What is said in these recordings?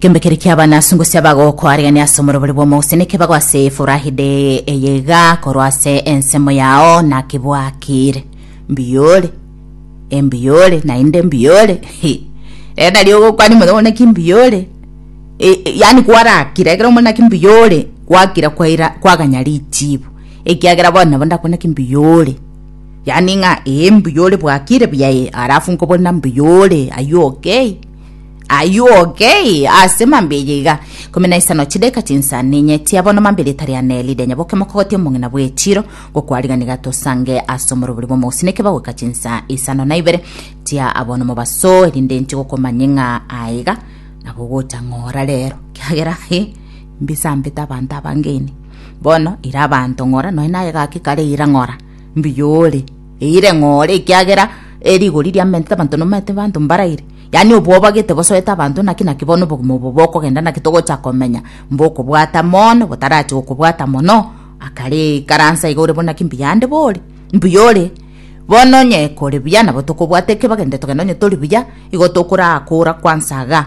Kembe kere kia abana asungu sia bagokoariania ase omorobori bw'omogusya nekebago ase efurahi de eyeiga korwa ase ensemo yao nakebwakire mbiyore embiyore naende mbiyore Hi. rero nario ogokwania mono mono naki mbiyore E- e- yaani kwarakira ekero omona naki mbiyore kwakira kwaira kwaganya richibu ekiagera bono nabo ndakwana naki mbiyore Yaani ng'a ee mbuya ore bwakire buya ee, alafu nkobona mbuya ore aywo okay aywo okay ase mambe eye iga ikomi na isano chideka chinsa ninyetia bono mambe rieta ria Neli rianya boke mokogotia omong'ina bw'echiro ngokwariga niga tosange ase omorobori bw'omogusini ekebagoika chinsa isano na ibere tia abono mobasoe rinde nchigokomanye ng'a aiga nabo ogocha ng'ora rero kiagera ee mbisambete abanto abangeni. Bono ira abanto ng'ora, nonya naye egaki kare eira ng'ora, mbuya ore, eire ng'ore, ekiagera eh, rigori riamentete abanto nomaete abanto mbaraire. Yaani obwoba gete bosoete abanto, naki naki bono obogima obo bokogenda, naki togocha komenya mbokobwata mono, botarache gokobwata mono. Akare ikaransa iga ore bono naki mbuya ande bore, mbuya ore. Bono onye kore buya nabo tokobwata eke bagende togende onye tori buya, igo tokoraa kora kwansa iga.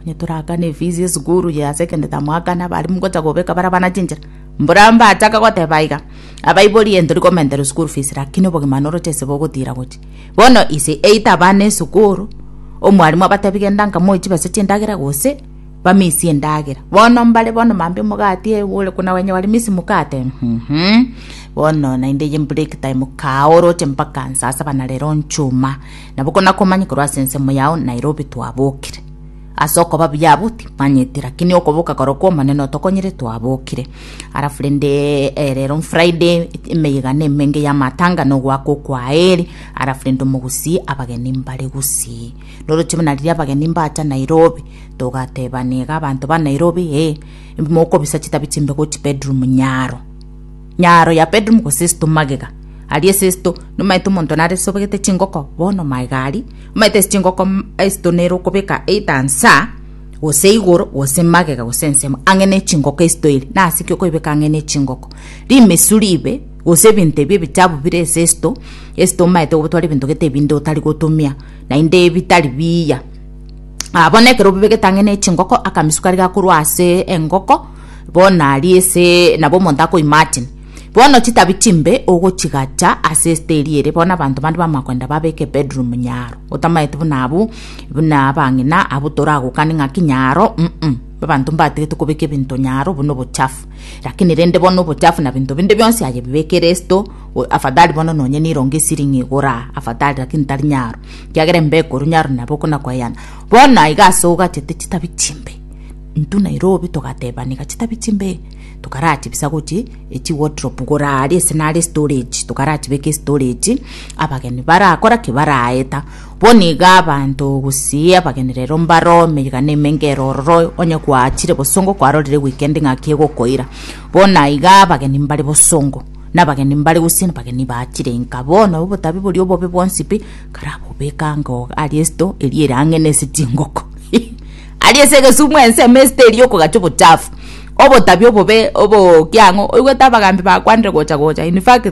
Onye torakane efisi esukuru ye ase ekende tamwakana abarimu gocha gobeka bara abana chinchera mburambe achaka goteba aiga abaibori ento rikomentera school fees lakini obogima noroche ase bogotira gochi bono ise eita abana esukuru omwarimu abatebi genda nka moe chibesa chindagera gose bamisie endagera bono mbare bono mambia omogati ee ore kuna wenye wari miss mukate uhumhum bono naende eye break time kaa oroche mpaka saa saba na rero nchuma. Nabo konakomanye korwa ase ensemo yao Nairobi twabokire. Ase okoba buya abwo timanyeti lakini okoboka korokwo omonene otokonyire twabokire. Alafu rende eh, rero Friday emeyegano emenge ya matanga no gwako kwaeri alafu rende omogusii abageni mbare gusii. Noroche buna riria abageni mbacha Nairobi togatebana iga abanto ba Nairobi eh mokobisa chitabi chimbe gochi bedroom nyaro. Nyaro ya Petero mogosesto magega aria esesto, nomaete omonto nare sobegete chingoko, bono magega aria, omaete ase chingoko esesto nere okobeka either nsa, gose igoro, gose magega, gose ensemo, ang'e ne chingoko esesto eri, nase ki okoebeka ang'e ne chingoko? Rimesu ribe, gose ebinto ebi ebichabu bire esesto, esesto omaete gobitwara ebinto gete ebinde otari gotumia, naende ebitari biya. Bono ekero obibegete ang'e ne chingoko, akamisu karia gakorwa ase engoko, bono aria ase nabo omonto akoima ati, Bono chitabi chimbe ogochigacha ase esete eria ere, bono abanto bande bamanya kogenda babeke ebedroom nyaro, otamaeti buna abwo, buna abang'ina abwo toragokane ng'aki nyaro, mm, abanto mbatigete kobeka ebinto nyaro, obwo na obochafu. Lakini rende bono obochafu na ebinto binde bionsi aye bibekere esete, o- afadhali bono nonye neirongo esirini igora, afadhali lakini tari nyaro, ekiagera embeko korwa nyaro nabo okona koyana. Bono aiga ase ogachete chitabi chimbe. Intwe Nairobi togateba niga chitabi chimbe, tokaratibisa gochia echi wardrobe gore aria ase nare storage, tokaratibeka estorage, abageni barakora ki baraeta, bono iga abanto gose abageni rero mbaro emegana emenge ero ororo onye gwachire bosongo kwarorire weekend ng'aki egokoira, bono aiga abageni mbare bosongo, na abageni mbare gose abageni bachire nka bono obotabi boria obobe bwonsi pi, karabobeka ango aria esto eria ere ang'e nase chingoko. Aria ase egesumu ensemo esete eria okogachia obochafu, obotabia obobe, obokiang'u, oigwete abagambi bakwanire gocha gocha, in fact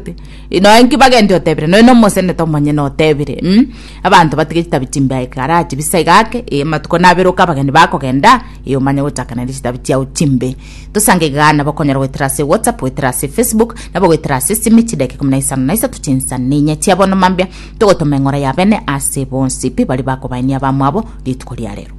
nonye inki bagende otebire nonye na omoseneta omonyene otebire mh, abanto batige chitabi chimbe ekara chibisa iga ake, eh amatuko naberoka abageni bakogenda, eh omanye gochakana nechitabi chiao chimbe. Tosange igaa nabo okonyara goetera ase whatsapp, goetera ase facebook, nabo goetera ase esimi chidakika ikomi na isano na isato chinsana na inya chia bono mambia, Togotoma eng'ora ya bene ase bonsi pi baria bakobaenia abamwabo rituko ria rero.